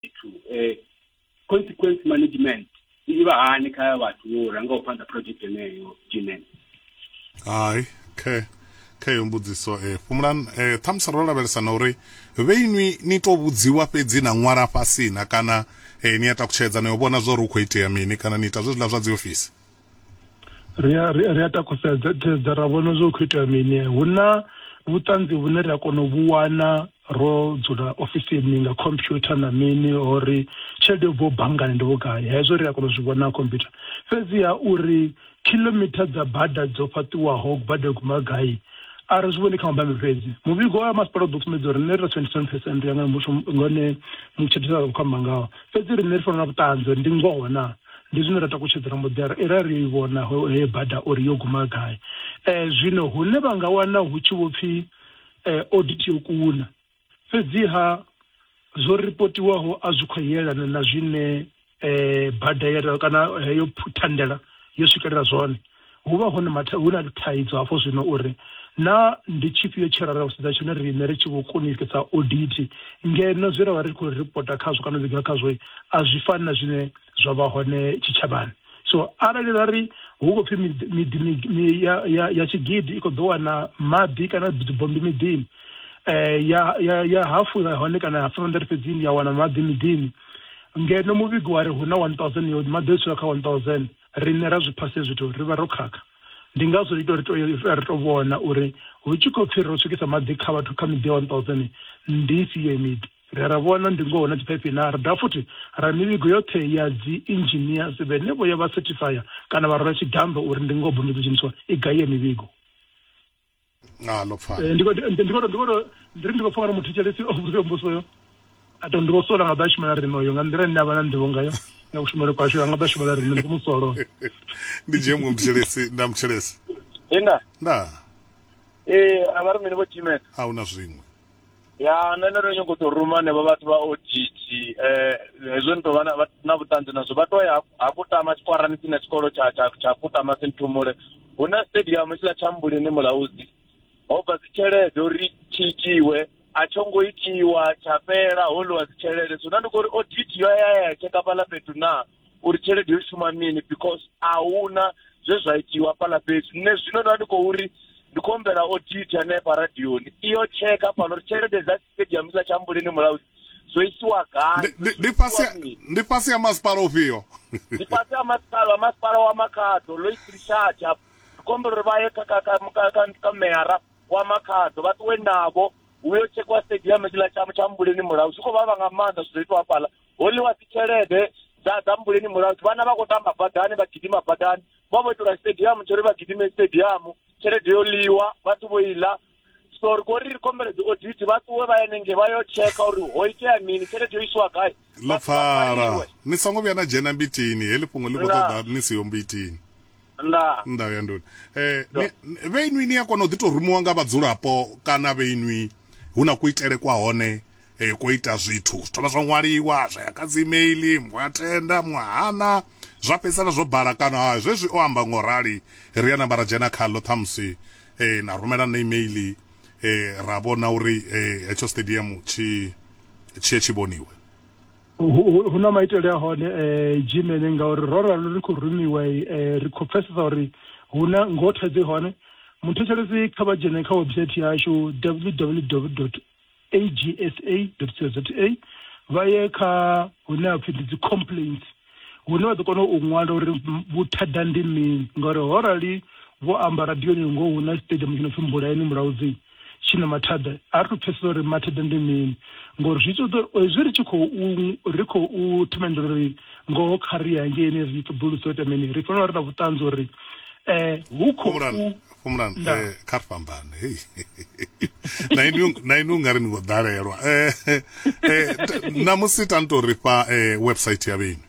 zwithu eh, consequence management i vha hani kha vhathu vho rangaho phanḓa project yeneyo jinen hai khe khe yo mbudziso eh fhumulan eh thamusi ro lavhelesa na uri vheinwi ni to vhudziwa fhedzi na ṅwala fhasi na kana eh ni ya takutshedza na yo vhona zwa uri hu khou itea mini kana ni ita zwezwiḽa zwa dzi ofisi ri a ri a- ri a takusedza sedza ra vhona zwo khou itea mini hu na vhuṱanzi vhune ri a kona u vhu wana ro dzula ofisini nga computer na mini ori tshelede yo bvaho banngani ndi vhugai hezwo ri a kona u zwi vhona ha computer fhedziha uri kilomitha dza bada dzo fhaṱiwaho bada yo guma gai a ri zwi vhoni kha mabambi fhedzi muvhigo wa masipala u ḓo sumbedza uri nṋe ri na 27 percent ya nga musho ngone mutshetshisa khou amba ngaho fhedzi riṋe ri fanela vhuṱanzi uri ndi ngoho na ndi zwine ra takutshedzela mudera era ri i vhona he bada uri yo guma gai um zwino hune vha nga wana hu tshi vho pfhi um audit yo kuna fhedziha zwo ripotiwaho a zwi khou yelana na zwine um bada kana heyo thandela yo swikelela zwone Hu vha hone matha, hu na thaidzo hafho zwino uri naa ndi tshifhio tshe ra ra u sedza tshone riṋe ri tshi vho kunisa odithi ngeno zwe ra vha ri khou ripota khazwo kana u vhiga khazwo a zwi fani na zwine zwa vha hone tshitshavhani. So arali ra ri hu khou pfi miḓi miḓi ya ya ya tshigidi i khou ḓo wana maḓi kana dzibombi miḓini ya ya ya hafu ya hone kana ya 500 fhedzi ya wana maḓi miḓini ngeno muvhigo wa ri hu na 1000 yo maḓi o dzula kha 1000. riṋe ra zwi phasa zwithu ri vha ro khakha ndi ngazwo ri to ri to ri to vhona uri hu tshi khou pfhi ro swikisa maḓi kha vhathu kha miḓi ya 1000 ndi ifhio miḓi ri ra vhona ndi ngoho na dziphaiphi na ri dovha futhi ra mivhigo yoṱhe ya dzi engineers vhene vho ya vha certifier kana vha rwela tshidambe uri ndi ngoho bondo dzo dzheniswa i gai ya mivhigo nga ḽo pfala eh, ndi khou ndiri ndi khou pfa ngari muthetshelesi o vhudzwa mbuso yo a to ndi vho sola nga ḓa shumela rino yo nga nḓila ine a vha na nḓivho ngayo nga kushumele kwashu a nga ḓa shumela rino ndi musolo ndi dzhie muṅwe muthetshelesi nda muthetshelesi nda nda ee a vha ri mini vho tshimela a hu na zwiṅwe ya nṋe ndo no nyago u tou ruma henevho vhathu vha oditi um hezwo ni tou vha na vhuṱanzi nazwo vha tou ya ha kutama tshikwarani tsine tshikolo tsha tsha tsha kutama sinthumule hu na stadium tshiḽa tsha mbulini mulauzi ho bva dzi tshelede uri tshi itiwe a tsho ngo itiwa tsha fhela ho ḽiwa dzi tshelede so na ndi kho uri oditi yo ya ya tsheka fhaḽa fhethu naa uri tshelede yo shuma mini because a huna zwe zwa itiwa fhaḽa fhethu nṋe zwino ndo vha ndi khou ri ndi khou humbela audit hanefha radioni iyo tsheka fhano uri tshelede dza stadium dza tshambuleni mulaudzi zwo isiwa gai ndi fhasi ya masipala ufhio ndi fhasi ya masipala wa masipala wa makhaḓo lois richard ndi khou humbela uri vha ye kha meyara wa makhaḓo vha ṱuwe navho uyo tshekwa stadium tshiḽa tsha tshambuleni mulaudzi zwi khou vhavha nga maanḓa zwi ḓo itwa fhaḽa ho ḽiwa dzi tshelede dza dza mbuleni mulandu vhana vha khou tamba badani vha gidima badani vha vho itelwa stadium tsho ri vha gidime stadium tshelede yo ḽiwa vhathu vho iḽa so ri khou ri ri khombela dzi audit vha ṱuwe vha yenenge vha yo tsheka uri ho itea mini tshelede yo isiwa gai ḽo pfala ni songo vhuya na dzhena mbitini heḽi fhungo ḽi khou ṱoḓa ni siho mbitini nda nda ya nduni eh vhe inwi ni a kona u ḓi to rumiwa nga vhadzulapo kana vhe inwi hu na kuitele kwa hone E, ko ita zwithu zwi thoma zwa ṅwaliwa zwa ya kha dzi email muṅwe a tenda muṅwe hana zwa fhedzisela zwo bala kana ha zwezwi o amba ngo rali ri ya namba ra dzhena khaḽo ṱhamusi e, na rumela na email e, ra vhona uri e, hetsho stadium tshi tshiye tshi vhoniwe hu na maitele a hone um jimene ngauri ro ralo ri khou rumiwa um ri khou pfesesa uri hu na ngoho thaidzo i hone muthetshelesi kha vha dzhene kha website yashu www agsa.co.za vha ye kha hune ha pfi ndi dzi complaints hune vha ḓo kona u ṅwala uri vhuthada ndi mini ngauri ho rali vho amba radioni ngo hu na stadium tshi no pfi mbulayeni mulaudzi tshi na mathada a ri to pfhesesa uri mathada ndi mini ngori zwi ṱoḓa hezwi ri tshi khou ri khou themendela uri ngoho kha ri hangeini ri ṱoḓulusa u ita mini ri fanela ri na vhuṱanzi uri um hu khou Fhumulani Nda. eh, kha ri fhambane hei na inwi- na inwi ungari ni khou ḓalelwa Eh, eh, t- ṋamusi ta ni tou ri fha eh, website ya vheni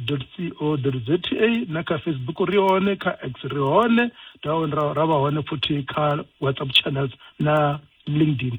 www.agsa.co.za na kha facebook ri hone kha x ri hone ra ra- ra vha hone futhi kha whatsapp channels na linkedin